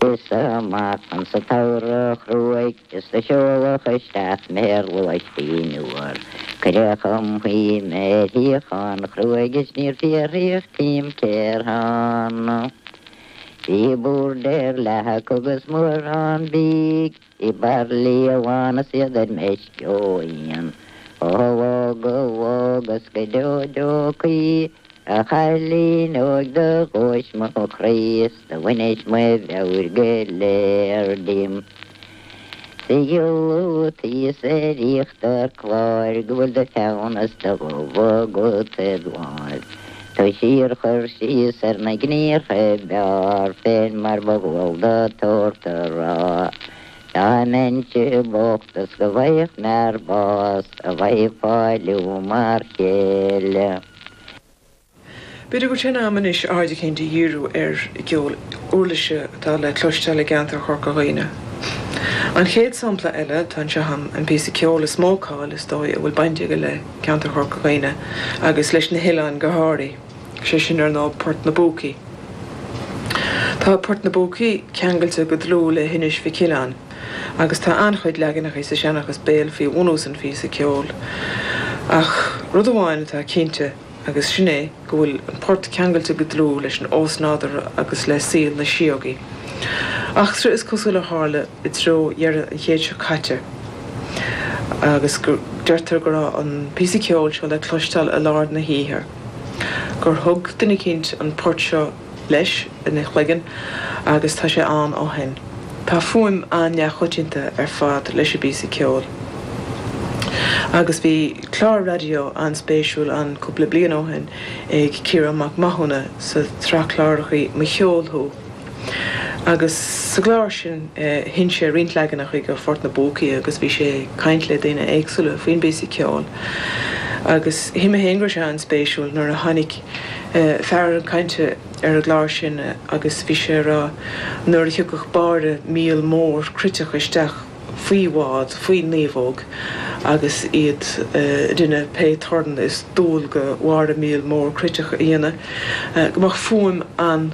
Is ar maidin sa tsamhradh chruaidh is do seoladh isteach mé ar lóistín fhuar. Cuireadh chun suí mé ar shuíochán chruaidh is níor fiarthaíodh díom cé ar thána. Bhí bord ar leathadh acu is mórán bídh. Bhí baraillí lán is iad ar meisce ó fhíon, Ó bhog ó bhog is go deo deo caoi, A chailín óig do ghluais mo chroí Is do bhainis mo mheabhair go léir díom. 'S a ghiolla atá thíos ar íochtar cláir Go bhfuil do pheann is do dhubh agat id' láimh. Tá síorchur síos ar na gníomhartha ab fhearr féin mar ba dhual dod shórt a rá, Dá mbeinnse bocht is go bhfaigheadh m'fhear bás, a bheifeá liom mar chéile. B'fhéidir go bhfuil sé in am anois aird eicínt a dhíriú ar an gceol uirlise atá le cloisteáil i gceantar Chorca Dhuibhne. An chéad sampla eile atá anseo agam an píosa ceoil is mó cáil, is dóigh, a bhfuil baint aige le. ceantar Chorca Dhuibhne agus leis na hoileáin go háirithe, sé sin ar ndóigh Port na bPúcaí. Tá Port na bPúcaí ceangailte go dlúth le hInis Mhic Uileáin agus tá an-chuid leaganachaí sa seanchas béil faoi bhunús an phíosa ceoil ach rud amháin atá cinnte agus sin é go bhfuil an port ceangailte go dlúth leis an ósnádúr agus le saol na síógaí, eachtra is cosúil a tharla i dtreo dheireadh an chéid seo caite, agus deirtear go raibh an píosa ceoil seo le cloisteáil i lár na hoíche, gur thug duine eicínt an port seo leis ina chloigeann agus tá sé ann ó shoin. Tá fuaim an-neamhchoitianta ar fad leis an bpíosa ceoil agus bhí clár raidió an-spéisiúil ann cúpla bliain ó shoin ag Ciarán Mac Mathúna sa tsraith clárachaí Mo Cheol Thú agus sa gclár sin sheinn sé roinnt leaganachaí de Phort na bPúcaí agus bhí sé ag caint le daoine éagsúla faoin bpíosa ceoil agus shíl mé féin go raibh sé an-spéisiúil nuair a tháinig fear chun cainte ar an gclár sin agus bhí sé ag rá nuair a thiocfadh báire míol mór cruiteach isteach faoi bhád, faoi naomhóg agus iad ag déanamh pé torann is dual do bháire míol mór cruiteach a dhéanamh, go mbeadh fuaim an.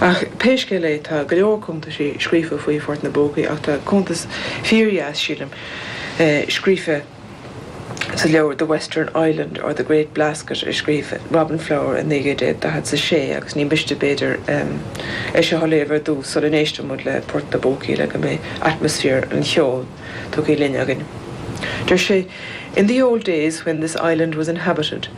Ach pé scéal é tá go leor cuntaisí scríofa faoi Phort na bPúcaí ach tá cuntas fíordheas sílim scríofa sa leabhar The Western Island or the Great Blasket a scríobh Robin Flower i 1946 agus ní miste b'fhéidir é seo a léamh ar dtús sula n-éistfidh muid le Port na bPúcaí le go mbeidh atmaisféar an cheoil tugtha linn againn. Deir sé In the old days when this island was inhabited,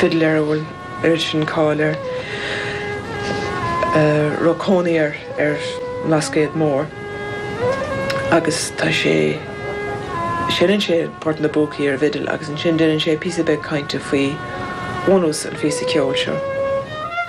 fidléir a bhfuil oiread sin cáil air, a raibh cónaí air ar an mBlascaod Mór agus tá sé, seineann sé port na bpúcaí ar an bhfidil agus ansin deineann sé píosa beag cainte faoi bhunús an phíosa ceoil seo.